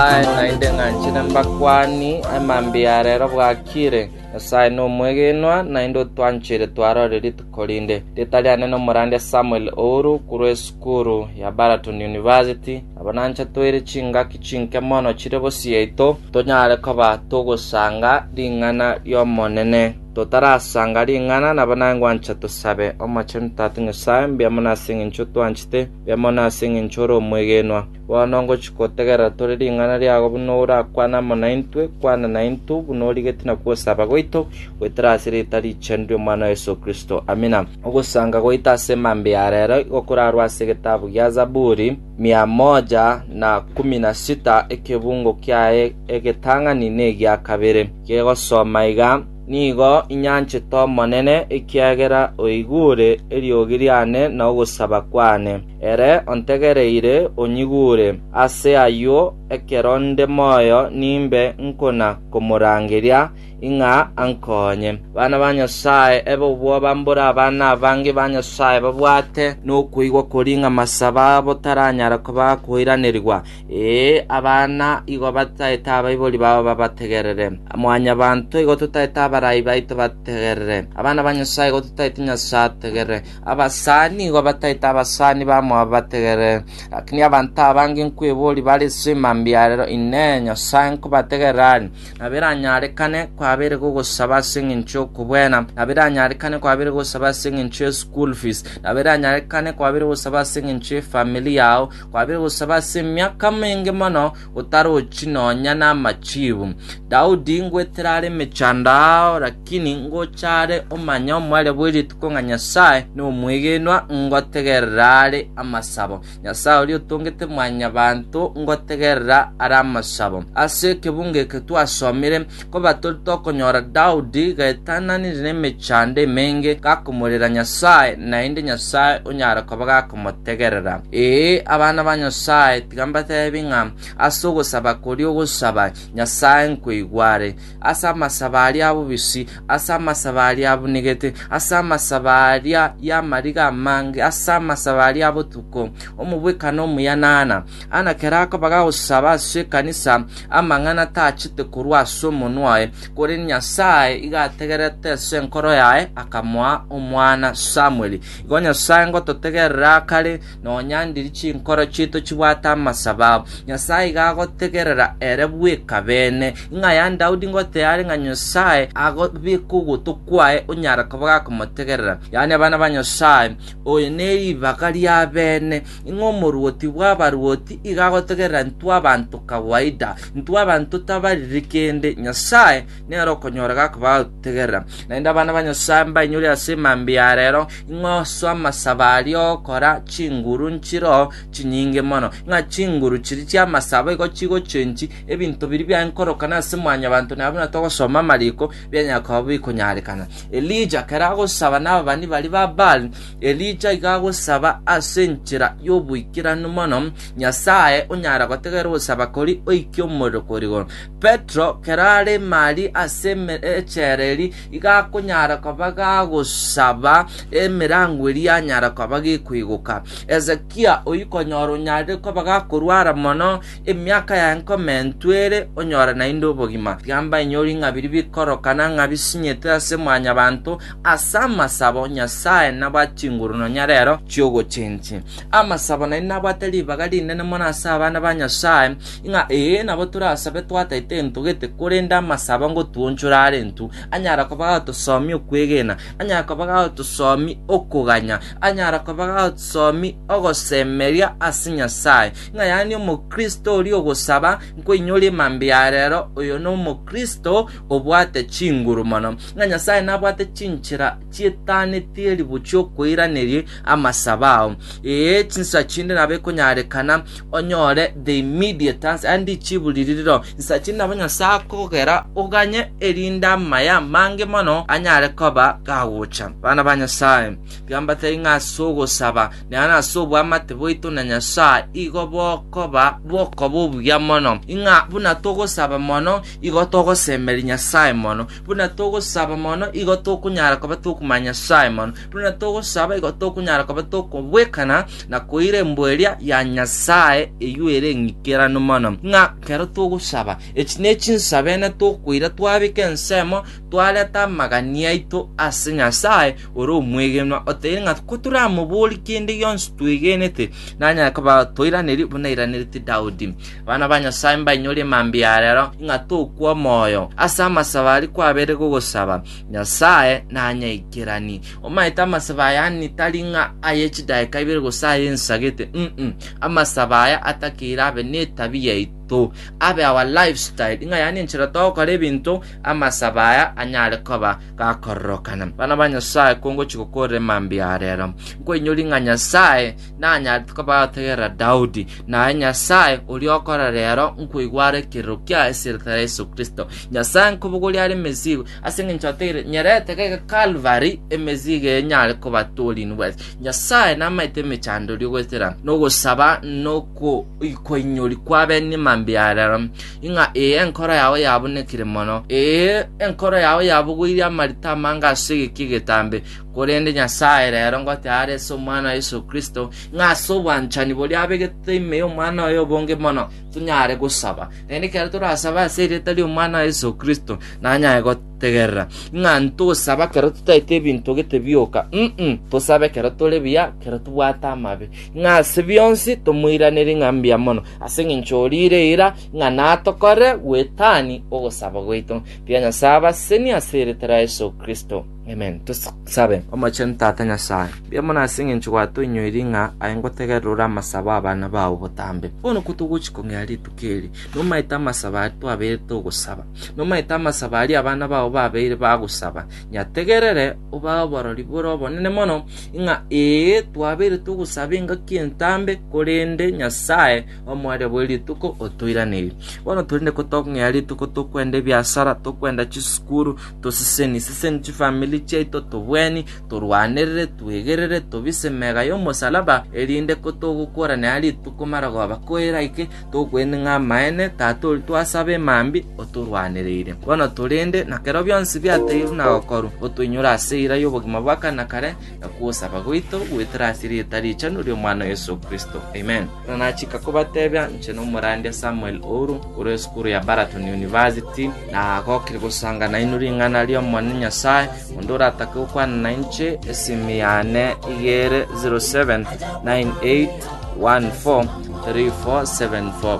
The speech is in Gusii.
Aye naende ng'anchire mbakwani, emambia ya rero bwakire. Nyasae nomwegenwa, naende otwanchire twarore rituko rinde. Rieta riane nomorandia Samuel Ouru, korwa esukuru ya Baraton University. Aba nancha toire chingaki chinke mono chire bosieito, tonyare koba togosanga ring'ana ri'Omonene. Totarasanga ring'ana, nabo naye ngwancha tosabe. Omochenu Tata Nyasae, mbiamono ase eng'encho otwanchete, mbiamono ase eng'encho ore omwegenwa. Bono ngochia gotegerera tore ring'ana riago buna orakwane amo naintwe, kwana naintwe buna origetie na kwosaba gwaito goetera ase erieta richenu ri'Omwana o Yeso Kristo. Amina. Ogosanga goita ase mambia ya rero igo korarue ase egetabu gia Zaburi, mia moja na kumi na sita, ekebungo kiaye egetang'ani negia kabere, kegosoma iga, Nigo inyanchete Omonene, ekiagera oigure eriogi riane na ogosaba kwane. Ere ontegereire onyigure. Ase ayio ekero nde moyo nimbe nkona komorangeria, ing'a ankonye. Bana ba Nyasae, ebe obwoba mbore abana abange ba Nyasae babwate nokoigwa koria ing'a masabo abo taranyara koba akoiranerigwa. Ee, abana igo bataete abaibori babo babategerere. Mwanyabanto igo totaete abarai baito bategerere. Abana ba Nyasae igo totaete Nyasae ategerere. Abasani nigo bataete abasani bamo aba bategere. Lakini abanto abange nkweboria bare ase emambia arero, Inee, Nyasae nkobategerera aria? Nabo eranyarekane kwabere gogosaba ase engencho y'okobwena, nabo eranyarekane kwabere gosaba ase engencho ye school fees, nabo eranyarekane kwabere gosaba ase engencho ye family yao, kwabere gosaba ase emiaka menge mono otarochi nonya namachiibu. Daudi ngwetera are emechando ao, lakini ngocha are omanye omwere bwe rituko ng'a Nyasae nomwegenwa, ngotegerera are amasabo. Nyasae oria otongete mwanyabanto, ngotegerera are amasabo. Ase ekebungo eke twasomire Koba tori tokonyora Daudi gaetananire nemechando emenge gakomorera Nyasae, naende Nyasae onyare koba gakomotegerera. Ee, abana ba Nyasae, tiga mbateebie ng'a ase ogosaba koria ogosaba, Nyasae nkoigware. Ase amasabo aria abobisi, ase amasabo aria abunigete, ase amasabo aria y'amariga amange, ase amasabo aria abotuko, omobwekano omuya naana, Ang'e kerakoba gagosaba ase ekanisa, amang'ana tachete korwa ase omonwa oye, korende Nyasae igo ategerete ase enkoro yaye, akamoa omwana Samueli. Igo Nyasae ngototegerera akare, nonya ndiri chinkoro chiaito chibwate amasabo abo. Nyasae igo agotegerera ere bweka beene. Ing'a ya Daudi ngotea are ng'a Nyasae agobeke ogoto kwaye onyare koba gakomotegerera, yaani abana ba Nyasae, oyo neribaga riabeene. Ing'o omorwoti bw'abarwoti iga agotogerera intwe abanto kawaida? Intwe abanto tabariri kende, Nyasae nere okonyora gakoba agotogerera. Naende abana ba Nyasae mbainyore ase emambia ya reero, ing'o ase amasabo aria ogokora chinguru nchire oo chinyinge mono, ng'a chinguru chiria chi'amasabo igo chigochenchi ebinto biria biaye nkorokana ase mwanyabanto na buna togosoma amariko, bianyara koba bikonyarekana. Elija ekero agosaba nababani baria ba Baali, Elija iga agosaba ase enchera y'oboikeranu mono, Nyasae onyare gotegera ogosaba koria oike omorero kore igoro. Petero, kera are Mali ase emechera eri, iga akonyara koba gagosaba emerango eria yanyara koba gekoigoka. Hezekia oyio konyora onyarire koba gakorwara mono, emiaka yaye nkoma entwe ere, onyore naende obogima. Tiga mbainyore ng'a biria bikorokana ng'a bisinyete ase Mwanyabanto, Ase amasabo Nyasae nabo achinguru nonya rero chi'ogochenchia. Amasabo naende nabwate ribaga rinene mono ase abana ba Nyasae, ng'a ee nabo torasabe twataete entogete, korende amasabo ngotuonchore arentu, anyara koba gatosomi okwegena, anyara koba gatosomi okoganya, anyara koba gatosomi ogosemeria ase Nyasae. Ng'a yaani omokristo oria ogosaba nkoinyore emambe ya rero, oyo nomokristo obwate chinguru mono, ng'a Nyasae nabwate chinchera chietanetie ribuchu chi'okoiraneria amasabo ao. Ee, chinsa chinde nabo ekonyarekana onyore the immediate answer, yaani richibu riri riro. Chinsa chinde nabo Nyasae akogera oganye erinde amaya amange mono anyare koba gagocha. Bana ba Nyasae, biambatari ng'a ase ogosaba, na yaani ase obwamate bwaito na Nyasae, igo bokoba bokoba obuya mono, ing'a buna togosaba mono Igo togosemeria Nyasae mono. Buna togosaba mono, igo tokonyara koba tokomanya Nyasae mono. Buna togosaba, igo tokonyara koba tokobwekana na koira embuo eria ya Nyasae eyio ere eng'ikeranu mono. Ng'a kero togosaba, echi ne chinsabe ene tokoira twabeka ensemo, twareta amagania aito ase Nyasae ore omwegenwa, oteire ng'a kotoramoborie kende gionsi twegenete, nanyare koba toiranerie buna airaneretie Daudi. Abana ba Nyasae, mbainyore mambia arero, ng'a tokwa omoyo ase amasabo aria kwabeire gogosaba, Nyasae nanyaikerani. Omanyete amasabo aya ani tari ng'a aye chidaeka ibere gose aye nsagete, mm, amasabo aya atakeire abe netabi yaito, abe our lifestyle, ng'a yani enchera togokora ebinto, amasabo aya anyare koba gakororokana. Bana ba Nyasae, kongochi gokorera mambia arero, nkoinyori ng'a Nyasae Nanyarete kobategerera Daudi, na aye Nyasae oria okora reero nkoigwa are ekerero kia eseretara ya Yeso Kristo. Nyasae nkobogoria are emesigo, ase engencho ateire nyerete gaiga Kalvari emesigo eye nyare kobatoorini bwete. Nyasae namaete emechandori ogwetera nogosaba nokoikoinyori kwa bene mambia yarero, ing'a ee enkoro yao yabunekire mono, ee enkoro yao yabogoirie amarita amange ase egeki egetambe, Korende Nyasae rero ngote aare ase Omwana oye Yeso Kristo, ng'a ase obwanchani boria abegete ime y'Omwana oye obonge mono, tonyare gosaba. Naende ekero torasabe ase erieta ri'Omwana oye Yeso Kristo, nanyare gotegerera, ng'a ntosaba ekero totaete ebinto gete bioka, inee, tosabe ekero tore buya, ekero tobwate amabe, ng'a ase bionsi tomoiranerie ng'a mbuya mono, ase engencho oriire eira, ng'a natokore bwetani ogosaba gwaito. Mbuya Nyasae abasenie ase erieta ria Yeso Kristo. Amen. Tosabe. Omochenu Tata Nyasae, mbuya mono ase engencho gwatoinyoiri ng'a aye ngotegerera ore amasabo abana bao botambe. Bono kotogochi kong'ea rituko eri, nomaete amasabo aria twabeirete ogosaba. Nomaete amasabo aria abana bao babeire bagosaba. Nyategerere, obae oborori bore obonene mono, ng'a ee, twabeirete ogosaba engaki entambe, korende, Nyasae, Omoerio bwe rituko otoiranerie. Bono torende ko tong'ea rituko tokwenda ebiasara, tokwenda chisukuru, toseseni seseni chifamili chiaito, tobweni, torwanerere, twegerere, tobise mega y'omosalaba, erinde ko togokworanera rituko marogoba koera ike, tokwenda ng'a amaene tatori twasaba emambi otorwanereire. Bono torende, na kero bionsi biateirwe na gokorwa, otoinyore ase eira y'obogima bwa kare na kare, na kogosaba gwaito goetera ase erieta richenu ri'Omwana o Yeso Kristo. Amen. Ekero nachika kobatebia inche nomorandia Samuel Ouru, korwa esukuru ya Baraton University, nagokire gosanga nainwe ring'ana ri'Omonene Nyasae, onde oratake gokwana nainche, esimi yane iga ere, 0798143474.